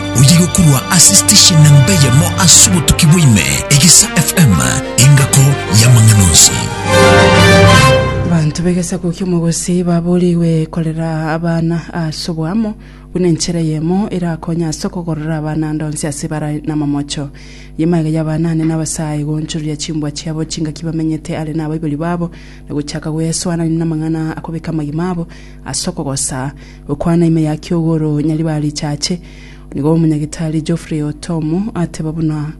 Oyo agokorwa ase station namba eyemo ase obotuki bwaime, Egesa FM, engako y'amang'ana onsi. Abanto b'egesaku ki'omogosi baboorigwe korera abana ase oboamo buna enchera eyemo erakonye ase okogorora abana ande onsi ase bara n'amamocho. Nyuma iga y'abana ane n'abasae goonchoreria chimbwa chiabo chingaki bamenyete are n'abaibori babo, na gochaka goesoanania namang'ana akobeka amagima abo ase okogosa. Gokwana ime ya kiogoro nyariba richache, nigo Omonyagitari Geoffrey Otomo ateba buna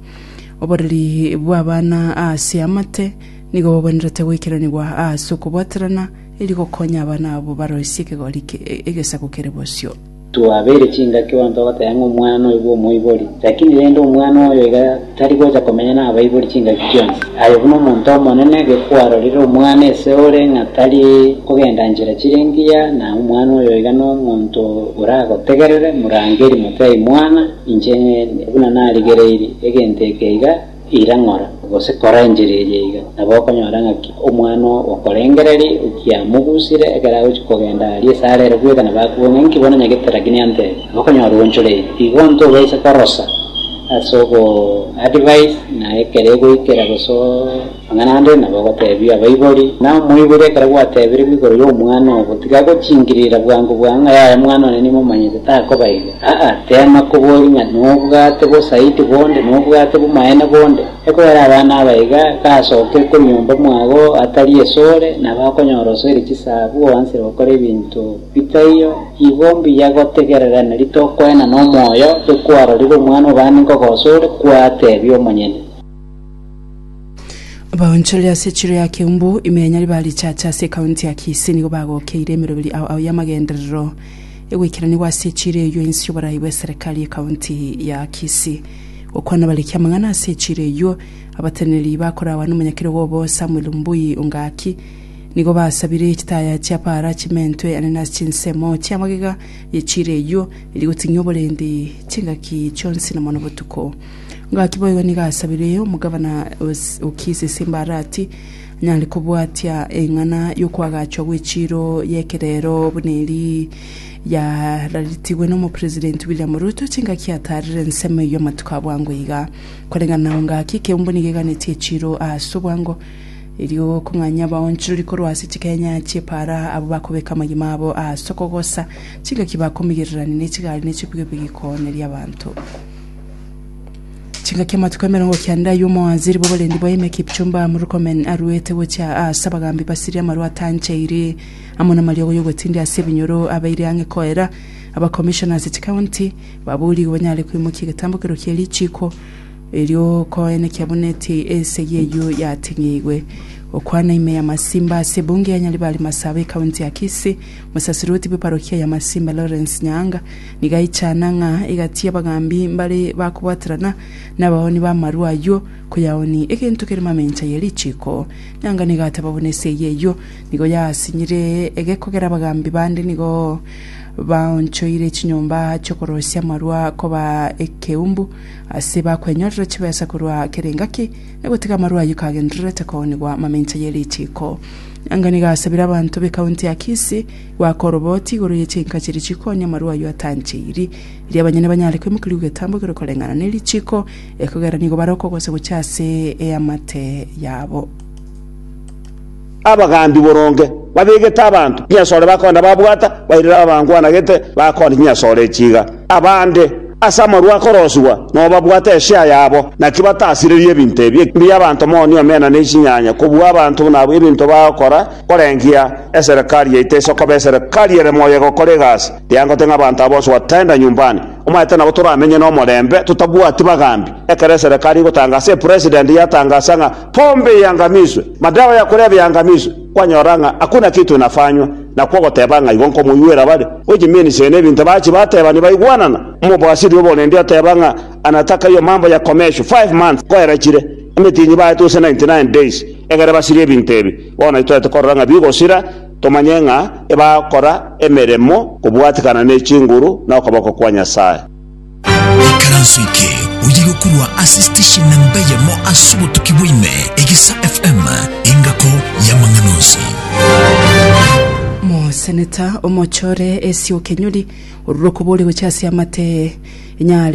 oboreri bw'abana ase amate nigo bogwenerete goikeranigwa ase okobwaterana erio gokonya abana abwo baroisie ekegori egesaku kere bosio. Twabeire chingaki onto ogoteba ng'a omwana oyo bw'omoibori, lakini rende omwana oyo iga. Tari gocha komenya nabaibori chingaki chionsi. Aye buna omonto omonene, gekwarorire omwana ese ore ng'a tari kogenda nchera chire engiya, na omwana oyo iga nomonto oragotegerere, morangeri, motebie, Mwana, inche ninde, buna narigereirie, egento eke iga, ira ng'ora, gose kora enchera eria iga. Nabo okonyora ng'aki omwana okorengereria, okiamogusire, ekero agochia kogenda aria esare ere bweka, nabo akobua ng'a, Inki bono nyagete Rabi nantebia? Nabo okonyora oonchoreirie. Igo ntobaisa korosa. Ase ogo advice na ekero egoikera gose amang'ana ande nabo ogotebia abaibori, na omoibori ekero gwatebirwe igoro y'omwana obo, tiga gochingirira bwango bwango ng'a yaya mwana one nimomanyete takoba igo. Aa, teema koboria ng'a nobwate bosaiti bonde, nobwate bomaene bonde. Ekoera abana aba iga, gasoke konyomba mwao atari esore, nabo akonyora osoire chisabu oansire gokora ebinto. Ritaiyo igo mbuya gotegererania ritokoena nomoyo ore kwarorire omwana o baani nkogoso ore kwateebia omonyene. Abaonchoreri ase echiro ya Keumbu, ime ya Nyariba richache ase ekaunti ya Kisii nigo bagokeire emeroberi ao ao y'amagenderero egoikeranigwa ase echiro eyio ensi y'oborai bw'eserekari y'ekaunti ya Kisii. Gokwana abariki amang'ana ase echiro eyio, abateneneri bakorawa nomonyakero obo Samuel Mbui Ongaki, Nigo basabire chitaya chia Baala chimentwe ane na chinsemo chi'amagega ye chiira eyio, eria goting'ia oborendi chingaki chionsi na mono botuko. Gaki boigo nigo asabire omogabana o Kisi Simbaara ati, anyare kobwatia eng'ana y'okoagachwa gw'echiiro y'ekerero buna eri yararetigwe n'Omopresidenti William Ruto chingaki ataarire ensemo eyio amatuko a bwango iga. Koreng'ana na engaki, ekeumbu nigo eganetie echiiro ase obwango, Erio okong'anya abaonchorori korwa ase chikenya chi'epaara abwo bakobeka amagima abo ase okogosa chingaki bakomigererania ne chigari ne chipigipigi kooneria abanto. Chingaki amatuko emerongo kenda ay'omwanziri bw'oborendi bwa ime Kipchumba Murkomen aruete gochia ase abagambi basirie amarwa atanchaire amo namariogo y'ogotindia ase ebinyoro abeire ang'e koera abakomishona ase chikaunti baboorigwe banyare koimokia egetambo kerokio richiiko Erio koene kiabuna eti esegi eyio yating'igwe. Gokwana ime ya Masimba ase ebunge ya Nyaribari Masaba ekaunti ya Kisii, Mosasiroti bwe parokia ya Masimba Lawrence Nyaanga nigo aichana ng'a egati y'abagambi mbare bakobwaterana nabaoni b'amarwa ayio koyaoni egento kere mamencha ye richiiko. Nyaanga nigo ateba buna esegi eyio nigo yasinyire egekogera abagambi bande nigo baonchoire chinyomba chi'okorosia amarwa koba ekeumbu Ase bakwenyorire chibesa korwa kera engaki, na gotiga amarwa ayio kagendererete koonigwa mamincha ye ritiiko. Anga nigo asabire abanto b'ekaunti ya Kisii goaka oroboti igoro ye chinka chiria chikoonia amarwa ayio atancheiri, erio abanyene banyare kwemokeria ogetambo ekero koreng'ana ne ritiiko, ekogera nigo bare okogosa gochia ase eamate yabo. Abagambi boronge babegete abanto chinyasore bakogenda babwata bairire ababangwanagete bakogenda chinyasore echi iga. Abande, ase amarwa akorosigwa, nobabwate eshare yabo, naki batasirerie ebinto ebi ekimbia abanto moni omena ne chinyanya kobua abanto buna abwo ebinto bagokora korengia eserekari yaito ase okoba eserekari ere moyo egokora egasi eyangote ng'a abanto aba bonsi wataenda nyumbani omaete nabo toramenye nomorembe totabwati bagambi ekero eserekari egotanga ase epresident yatangasa ng'a Pombe eangamiswe, madawa ya korevia eangamiswe, kwanyora ng'a hakuna kitu inafanywa, nakwo ogoteba ng'a igo nkomoigwera bare, gochia Menisee na ebinto bachia bateebania baigwanana. Omobwasiri o borendi oteba ng'a anatakayo mambo ya komeshwa five months koerachire, emetinyi baete gose ninety nine days egere basirie ebinto ebi. Bono itoete korora ng'a bigosira, tomanye ng'a ebakora emeremo kobwatikana ne chinguru na okoboko kwa Nyasae. Ekaranso eke oye gokurwa ase station namba eyemo ase obotuki bwaime, Egesa FM, engako y'amang'ana onsi. Moseneta omochore Esio Kenyori orure okoboria gochia ase amatee inyare